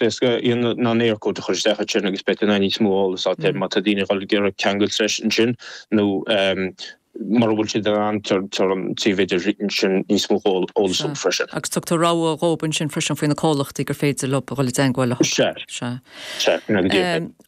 Is gá an Eircode a chur isteach ansin agus beidh níos mó eolas ann má tá daoine ag goil ag iarraidh ceangal théis ansin nó mura bhfuil siad in ann tá an méid sin níos mó eolas ann freisin. Agus tugtar rogha dhóib ansin freisin faoi na comhlachtaí gur féidir leo a dhul i dteangmháil leo. Sea. Sea. Sea.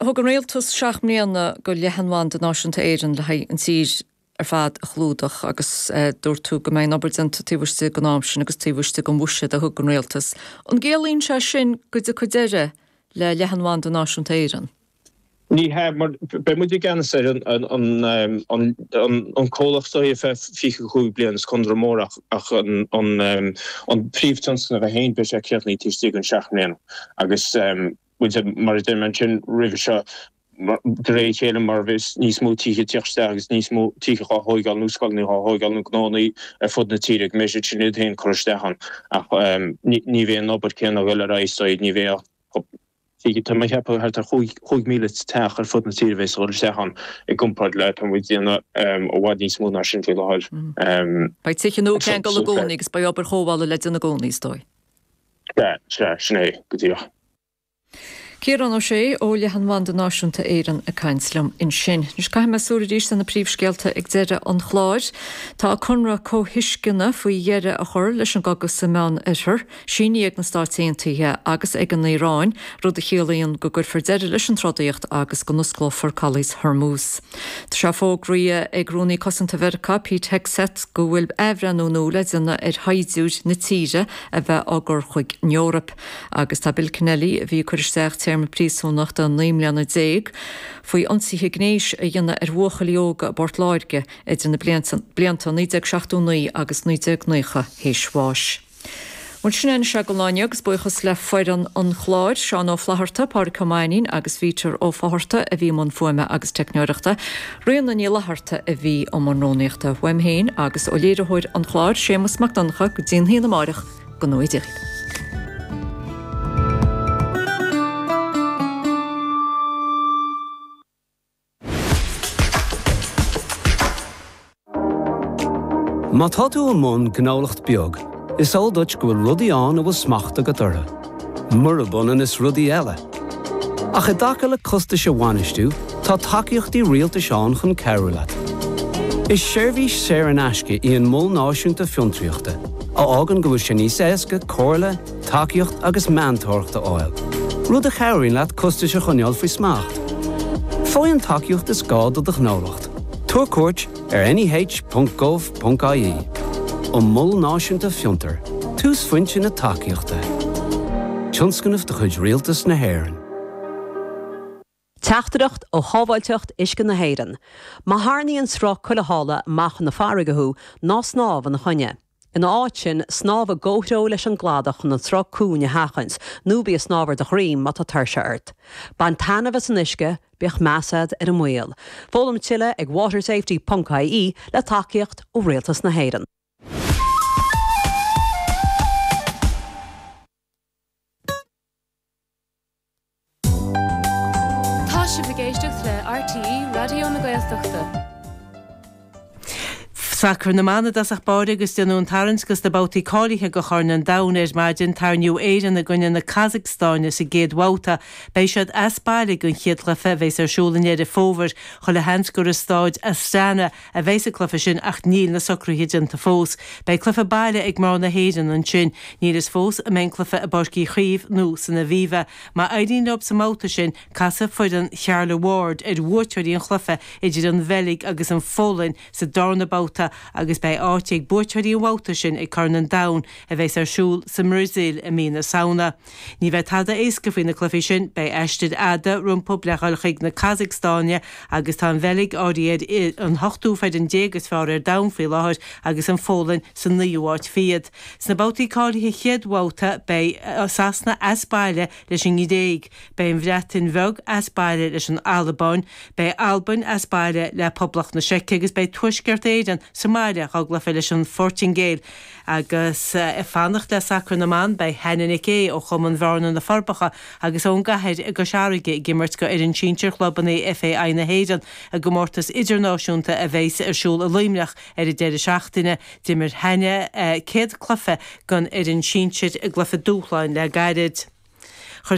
Thug an Rialtas seacht mbliana go Leathanbhanda Náisiúnta Éireann le haghaidh an tír ar fad a chlúdach agus dúirt tú go mbeidh an obair déanta taobh istigh den am sin agus taobh istigh den bhuiséad a thug an Rialtas. An gciallaíonn sé sin go dtiocfaidh deireadh le leathanbhanda náisiúnta Éireann? Ní hea, mar beidh muid i gceannas ar an comhlacht ar feadh 25 bliain, is conradh mór ach an príomhthionscnamh é féin, beidh sé críochnaithe taobh istigh den seacht mbliana agus Bhfuil sé mar a deirim ansin roimhe seo de réir a chéile mar bheas níos mó tithe ag tíocht isteach agus níos mó tithe dhá thóigeáil nó scoileanna dhá thóigeáil nó gnóanna ar fud na tíre go mbeidh siad sin iad féin curtha isteach ann ach ní bheidh an obair céanna a dhul ar aghaidh so ní bheidh ach tá mé a cheapadh thart ar chúig chúig míle teach ar fud na tíre a bheas a dhul isteach ann i gcomparáid le atá muid déanamh i bhfad níos mó ná sin faoi láthair. Beidh tithe nua ceangail i gcónaí agus beidh obair chothabhála le déanamh i gcónaí is dóigh. Sea, sea, sin é go díreach. Ciarán Ó Sé ó Leathanbhanda Náisiúnta Éireann ag caint liom ansin. Anois caithfidh mé súil arís ar na príomhscéalta ag deireadh an chláir. Tá conradh comhthuisceana faoi dheireadh a chur leis an gcogadh sa Meán Oirthear sínithe ag na Stáit Aontaithe agus ag an Iaráin, rud a chiallaíonn go gcuirfear deireadh leis an trodaíocht agus go n-osclófar Caolas Hormuz. Tá sé fógraithe ag Rúnaí Cosanta Mheiriceá Pete Hegseth go bhfuil athbhreithniú nua le déanamh ar shaighdiúirí na tíre, a bheith á gcur chuig an Eoraip agus tá Bill Kennelly, a bhí ag cur isteach téarma príosúnachta naoi mbliana déag faoi ionsaithe gnéis a dhéanamh ar bhuachaillí óga i bPort Láirge idir na blianta 1979 agus 1990, théis bháis. Bhuel, sin é an scéal againn inniu agus buíochas le foireann an chláir, Seán Ó Flaithearta, Pádraig Ó Mainnín agus Peter Ó Fátharta a bhí i mbun fuaime agus teicneoireachta. Ríona Ní Fhlatharta a bhí i mbun rúnaíochta. Uaim féin agus ó léiritheoir an chláir, Séamas Mac Donncha, go dtí a haon amárach, go n-éirí libh. Má tá tú i mbun gnólacht beag, is eol duit go bhfuil rudaí ann a bhfuil smacht agat orthu. murab ionann is rudaí eile. Ach i dtaca le costais a bhainistiú, tá tacaíochtaí rialtais ann chun cabhrú leat. Is seirbhís saor in aisce í an Mol Náisiúnta Fiontraíochta, a fhágann go bhfuil sé níos éasca comhairle, tacaíocht agus meantóireacht a fháil, rud a chabhraíonn leat costais a choinneáil faoi smacht. Faigh an tacaíocht is gá do do ghnólacht. Tabhair cuairt. ar neh.gov.ie An Mol Náisiúnta Fiontair, túsphointe na tacaíochta, tionscnamh de chuid Rialtas na hÉireann. Teachtaireacht ó Shábháilteacht Uisce na hÉireann, Má tharraingíonn sruth cúil amach na farraige thú, ná snámh ina choinne. Ina áit sin, snámh i gcomhthreo leis an gcladach chun an sruth cúng a sheachaint, nó bí ag snámh ar do dhroim má tá tuirse ort. Bain taitneamh as an uisce, bíodh meas agat ar an mbaol. Foghlaim tuilleadh ag watersafety ponc ie, le tacaíocht ó Rialtas na hÉireann. Tá sibh ag éisteacht le RTÉ Raidió na Gaeltachta. Sacar na mban i dtosach báire agus déanadh an tarraingt go sna babhtaí cáilithe do Chorn an Domhain ar maidin. Tarraingíodh Éirinn i gcoinne na Casacstáine sa gcéad bhabhta. Beidh siad as baile ag an chéad chluiche a bheas ar siúl i nDeireadh Fómhair. Chuile sheans gur i Stáid Astana a bheidheas an cluiche sin ach níl na socruithe déanta fós. Beidh cluiche baile ag mná na hÉireann ansin. Níl fhios fós an mbeidh an cluiche i bPáirc Uí Chaoimh nó san Aviva. Má éiríonn leo sa mbabhta sin, casfaidh foireann Carla Ward ar bhuaiteoirí an chluiche idir an Bheilg agus an Pholainn sa darna babhta agus beidh áit ag buaiteoirí an bhabhta sin ag Corn an Domhain a bheas ar siúl sa mBrasaíl i mí na Samhna. Ní bheidh tada éasca faoi na cluichí sin. Beidh aistir fhada rompu le dhul chuig an gCasacstáin agus tá an Bheilg áirithe ar an ochtú foireann déag is fearr ar domhan faoi láthair agus an Pholainn sa naoú háit fichead. Sna babhtaí cáilithe chéad bhabhta beidh Sasana as baile leis an nGréig, beidh an Bhreatain Bheag as baile leis an Albáin, beidh Albain as baile le Poblacht na Seice agus beidh Tuaisceart Éireann sa mbaile dhá gcluiche leis an Phortaingéil. Agus ag fanacht le sacar na mban, beidh Hannah Nic Aodha ó chumann Bhearna na Forbacha agus ón gCathair i gCois Fharraige ag imirt go fhoireann sinsir chlubanna FAI na hÉireann i gcomórtas idirnáisiúnta a bheas ar siúl i Luimneach ar an deireadh seachtaine. D'imir Hannah a céad cluiche don fhoireann sinsir i gcluiche dúshláin le gairid. Chuir